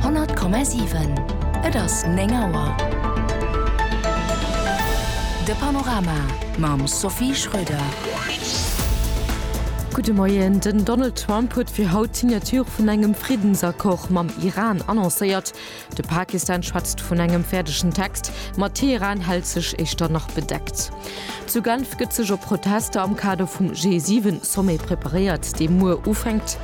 100,7 Et ass 9 Auer. De Panorama mam Sophie Schröder. Gudde Moien. Den Donald Trump huet fir haut d'Signature vun engem Friddensaccord mam Iran annoncéiert. De Pakistan schwätzt vun engem fäerdegen Text, ma Teheran hält sech éischter nach bedeckt. Zu Genf gëtt sech op Protester am Kader vum G7-Sommet preparéiert, dee muer ufänkt.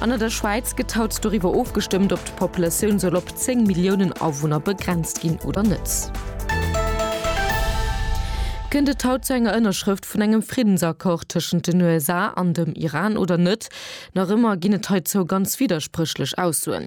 An an der Schwäiz gëtt haut doriwwer ofgestëmmt, ob d'Populatioun soll op 10 Milliounen Awunner begrenzt ginn oder net. Kënnt et haut zu enger Ënnerschrëft vun engem Friddensaccord tëschent den USA an dem Iran oder net? Nach ëmmer ginn et heizou ganz widderspréchlech Aussoen.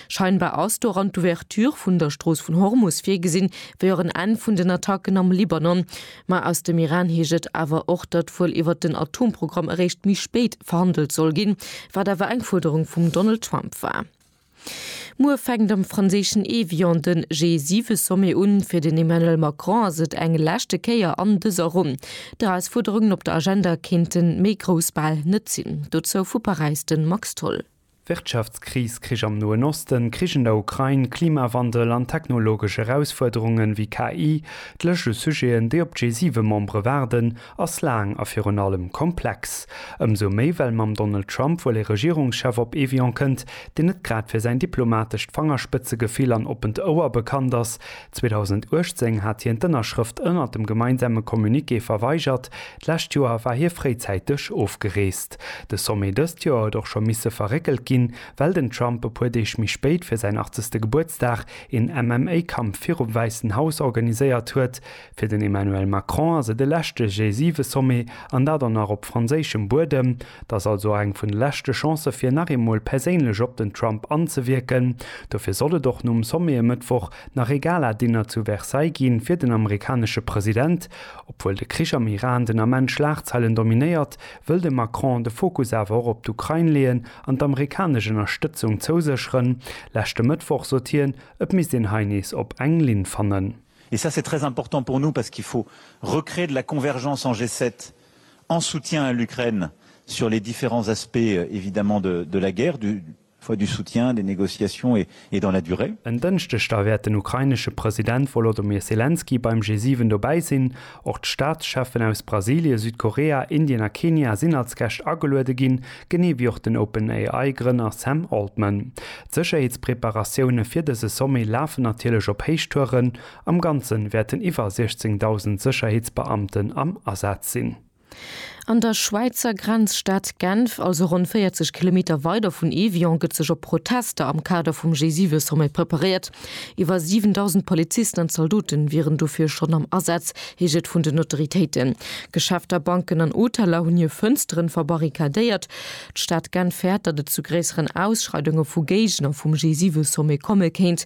Scheinbar ass doran d'Ouverture vun der Strooss vun Hormus virgesinn, wéi och en Enn vun den Attacken am Libanon. Ma aus dem Iran heescht et awer och, datt wuel iwwert den Atomprogramm eréischt méi spéit verhandelt soll ginn, wat awer eng Fuerderung vum Donald Trump war. Muer fänkt am franséischen Évian de G7-Sommet un. Fir den Emmanuel Macron ass et eng leschte Kéier an dëser Ronn. D'Erausfuerderungen op der Agenda kéinten méi grouss bal net sinn. Dozou vu Paräis de Max Tholl. Wirtschaftskris, Krich am Noen Osten, Krich an der Ukrain, Klimawandel an technologesch Erausfuerderungen wéi KI, d'Lëscht u Sujeten, déi op d'G7-Membere waarden, ass laang a virun allem komplex. Ëmsou méi, well mam Donald Trump wuel ee Regierungschef op Evian kënnt, deen net grad fir säin diplomatescht Fangerspëtzegefill an oppent Ouer bekannt ass. 2018 hat hien d'Ënnerschrëft ënnert dem gemeinsame Communiqué verweigert, d'lescht Joer war hie fréizäiteg ofgereest. De Sommet dëst Joer huet och scho misse verréckelt ginn, well den Trump e puer Deeg méi spéit fir säin 80. Gebuertsdag een MMA-Kampf virum Wäissen Haus organiséiert huet. Fir den Emmanuel Macron ass et e leschte G7-Sommet, an dat och nach op franséischem Buedem. Et ass also och eng vun de leschte Chancë fir nach eemol perséinlech op den Trump anzewierken. Dofir soll et och nom Sommet e Mëttwoch nach ee Gala-Dinner zu Versailles gi fir den amerikanesche President. Obwuel de Krich am Iran den Ament Schlagzeilen dominéiert, wëll de Macron de Fokus awer och op d'Ukrain leeën an d'amerikanesch Ënnerstëtzung zousécheren. Leschte Mëttwoch sot hien, et misst een hei nees op eng Linn fannen. Et ça c'est très important pour nous parce qu'il faut recréer de la convergence en G7 en soutien à l'Ukraine sur les différents aspects évidemment de la guerre, du. Choix du soutien, des négociations et dans la durée. En Dënschdeg da wäert den ukrainesche President Volodymyr Selenskyj beim G7 dobäi sinn. Och d'Staatscheffen aus Brasilie, Südkorea, Indien a Kenia sinn als Gäscht ageluede ginn, genee wéi och den OpenAI Grënner Sam Altman. D'Sécherheetspreparatioune fir dëse Sommet lafen natierlech op Héichtouren. Am Ganze wäerten iwwer 16.000 Sécherheetsbeamten am Asaz sinn. An der Schwäizer Grenzstad Genf, also ronn 40 Kilometer weider vun Évian, gëtt sech op Protester am Kader vum G7-Sommet preparéiert. Iwwer 7.000 Polizisten an Zaldote wieren dofir schonn am Asaz, heescht et vun den Autoritéiten. Geschäfter, Banken an Hoteller hunn hir Fënstere verbarrikadéiert. D'Stad Genf fäert, datt et zu gréisseren Ausschreidunge vu Géigner vum G7-Sommet komme kéint.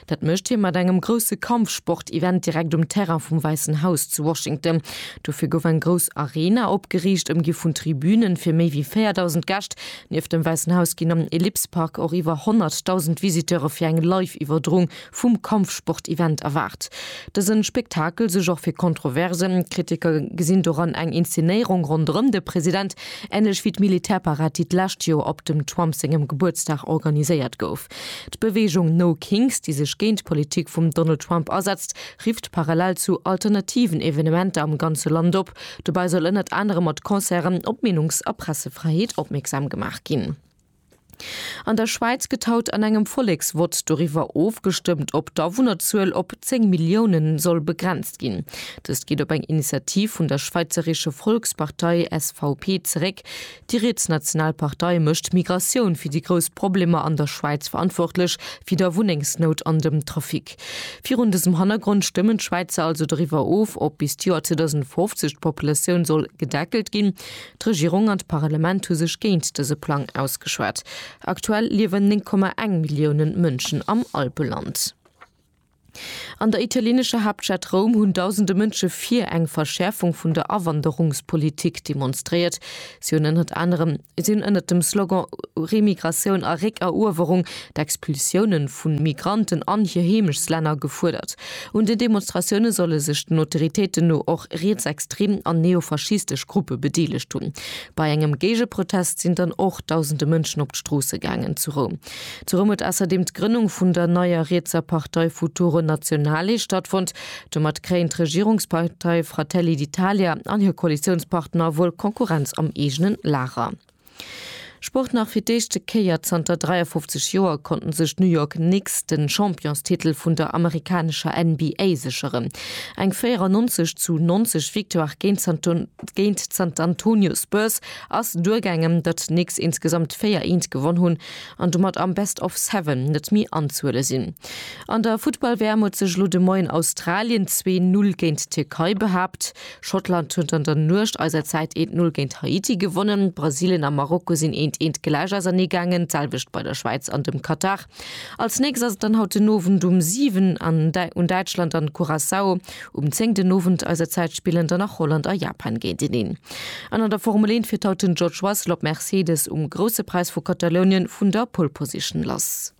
Dat mécht hie mat engem grousse Kampfsport-Event direkt um Terrain vum Wäissen Haus zu Washington. Dofir gouf eng grouss Arena opgeriicht, ëmgi vun Tribünen fir méi wéi 4.000 Gäscht. Nieft dem Wäissen Haus ginn am Ellipse Park och iwwer 100.000 Visiteure fir eng Live-Iwwerdroung vum Kampfsport-Event erwaart. Dëse Spektakel suerg och fir Kontroversen. Kritiker gesinn doran eng Inszenéierung ronderëm de President, änlech wéi d'Militärparad, déi d'lescht Joer op dem Trump sengem Gebuertsdag organiséiert gouf. D'Beweegung No Kings, déi sech géint d'Politik vum Donald Trump asetzt, rifft parallel zu alternativen Evenementer am ganze Land op. Dobäi soll ënnert anerem mat Concerten op d'Meenungs a Pressefräiheet opmierksam gemaach ginn. An der Schwäiz gëtt haut an engem Volleksvott doriwwer ofgestëmmt, ob d'Awunnerzuel op 10 Milliounen soll begrenzt ginn. Dëst geet op eng Initiativ vun der schwäizeresche Volkspartei, SVP, zeréck, Déi riets National Partei mécht d'Migratioun fir déi grouss Problemer an der Schwäiz verantwortlech, wéi der Wunnengsnout an dem Trafic. Virun dësem Hannergrond stëmmen d'Schwäizer also doriwwer of, ob bis d'Joer 2050 d'Populatioun soll gedeckelt ginn. D'Regierung an d'Parlement hu sech géint dëse Plang ausgeschwat. Aktuell liewen 9,1 Milliounen Mënschen am Alpeland. An der italienescher Haaptstad Roum hunn dausende Mënsche fir eng Verschäerfung vun der Awanderungspolitik demonstréiert. Si hunn ënnert anerem si hunn ënnert dem Slogan Remigratioun a Réckeruewerung d'Expulsioune vu Migranten an hir Heemechtlänner gefuerdert. Un den Demonstratioune solle sech den Autoritéiten no och rietsextrem an neofaschistesch Gruppe bedeelegt hunn. Bei engem Géigeprotest sinn dann och dausende Mënschen op d'Stroosse gaangen zu Roum. Zu Rëm huet ausserdeem d'Grënnung vun der neier rietser Partei Futuro Nazionale stattfonnt. Domat kréien d'Regierungspartei Fratelli d'Italia an hir Koalitiounspartner wuel Konkurrenz am eegenen Lager. Sport Nach fir d'éischte Kéier zanter 53 Joer konnten sech d'New York Knicks de Championstitel vun der amerikanescher NBA sécheren. Eng 94 zu 90 Victoire géint d'San Antonio Spurs Ass duergaangem datt d'Knicks insgesamt 4 Eent gewonn hunn an domat am Best of Seven net mi anzuhuele sinn. An der Futtball WM huet sech elo de Moien Australien zwee Null géint d'Tierkei behaapt. Schottland huet an der Nuecht eiser Zäit eent Null géint Haiti gewonnen. Brasilien a Marokko sinn eent eent gläich ausernee gaangen, d'selwecht bei der Schwäiz an dem Katar. Als nächst ass et dann haut den Owend um 7 an un Däitschland an Curaçao. Um 10 den Owend eiser Zäit spillen dann nach Holland a Japan géinteneen. An an der Formel 1 fiert haut den George Russell op Mercedes um Grousse Präis vu Katalounien vun der Pole Position lass.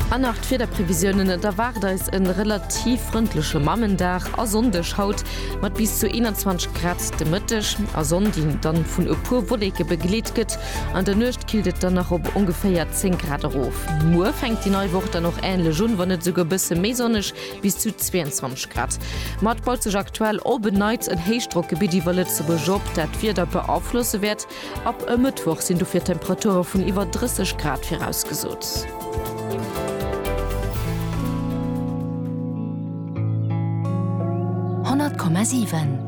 An nach d'Wiederprevisiounen, Et erwaart eis e relativ frëndleche Mammendag a Sonndeg haut mat bis zu 21 Grad de Mëtteg a Sonndin dann vun e puer Wolleke begleet gëtt. An der Nuecht killt et dann nach op ongeféier 10 Grad erof. Muer fänkt déi nei Woch dann och änlech un, wann net esouguer e bësse méi sonneg, bis zu 22 Grad. Ma et baut sech aktuell op en Neits en Héichdrockgebitt iwwer Lëtzebuerg op, dat d'Wieder beaflosse wäert. Ab e Mëttwoch sinn dofir Temperature vun iwwer 30 Grad virausgesot. Honnert Komma siwen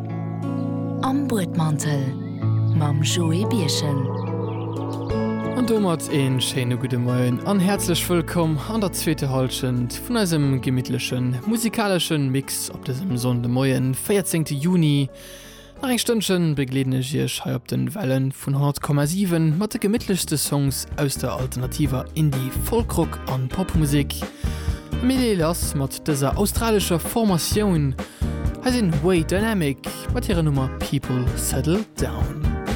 am Buedmantel. mam Joé Birchen. An domat een schéine gudde Moien an häerzlech wëllkomm an der zweeter Halschent vun eisem gemittlechen musikaleschen Mix op dësem Sonndemoien 14 Juni. Nach eng Stënnchen begleeden ech iech hei op den Wellen vun 100,7 mat de gemittlechste Songs aus der alternativer Indie, Folk-Rock an Popmusik. Mir leeë lass mat Dëser australescher Formatioun hei sinn Way Dynamic mat hirer Nummer People Settle Down.